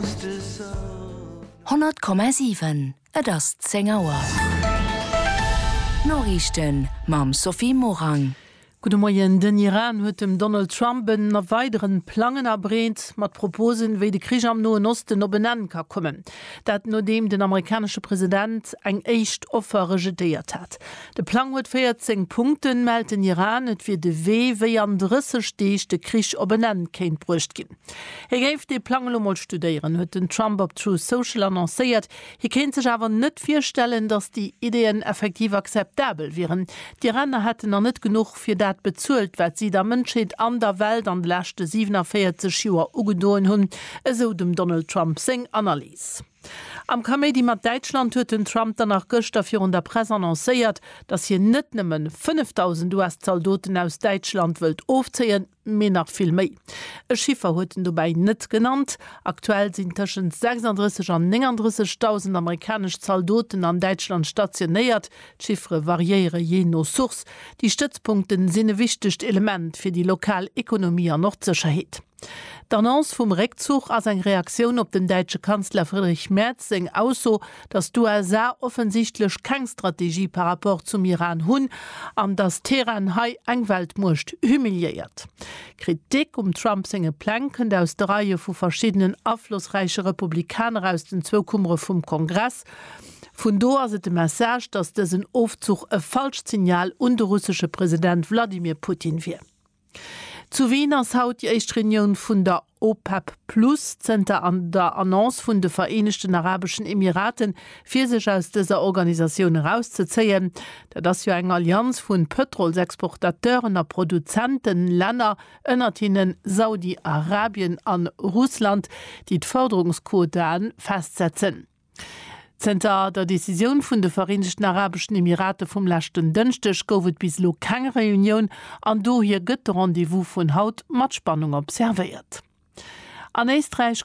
100,7 Et ass 10 Auer. D'Noriichten mam Sophie Morang. Gudde Moien. Den Iran huet dem Donald Trump en a weideren Plangen abreet, mat Proposen, wéi de Krich am Noen Osten op en Enn ka kommen. Dat nodeem den amerikanesche President eng éischt Offer rejetéiert hat. De Plang huet 14 Punkten, mellt den Iran. Et wier de Wee, wéi an 30 Deeg de Krich op en Enn kéint bruecht ginn. Hie géif dee Plang elo mol studéieren, huet den Trump op Truth Social annoncéiert. Hie kéint sech awer net virstellen, datt déi Ideeën effektiv akzeptabel wieren. D'Iraner hätten nach net genuch fir dat bezuelt, wat si der Mënschheet an der Welt an de leschte 47 Joer ugedoen hunn, esou dem Donald Trump seng Analys. Am Kaméidi mat Däitschland huet den Trump dann nach gëschter virun der Press annoncéiert, datt hien net nëmmen 5.000 US-Zaldoten aus Däitschland wëllt ofzéien, mee nach vill méi. E Chiffer huet en dobäi net genannt, Aktuell sinn tëschent 36 an 39 dausend amerikanesch Zaldoten an Däitschland stationéiert. D'Chiffere variéiere jee no Source. Déi Stëtzpunkte sinn e wichtegt Element fir déi lokal Ekonomie an och d'Sécherheet. D'Annonce vum Réckzuch ass eng Reaktioun op dem däitsche Kanzler Friedrich Merz seng Ausso, dass d'USA offensichtlech keng Strategie par rapport zum Iran hunn an dass Teheran hei eng Weltmuecht humiliéiert. Kritik um Trump senge Pläng kënnt aus de Reie vu verschiddenen aflossräiche Republikaner aus den zwou Kummere vum Kongress. Vun do ass et de Message, dass dësen Ofzuch e falscht Signal un de russesche President Wladimir Putin wier. Zu Wien ass haut déi éischt Reunioun vun der OPEC Plus zënter der Annonce vun de Vereenegten Arabeschen Emiraten, fir sech aus dëser Organisatioun erauszezéien. Dat ass jo eng Allianz vu Pëtrolsexportateuren a Produzentenlänner, ënnert hinne Saudi-Arabien a Russland, déi d'Fërderungsquotae festsetzen. Zënter der Decisioun vun de Vereenegten Arabeschen Emirate vum leschten Dënschdeg gouf et bis elo keng Reunioun an dohier gëtt de Rendez-vous vun haut mat Spannung observéiert. An Éisträich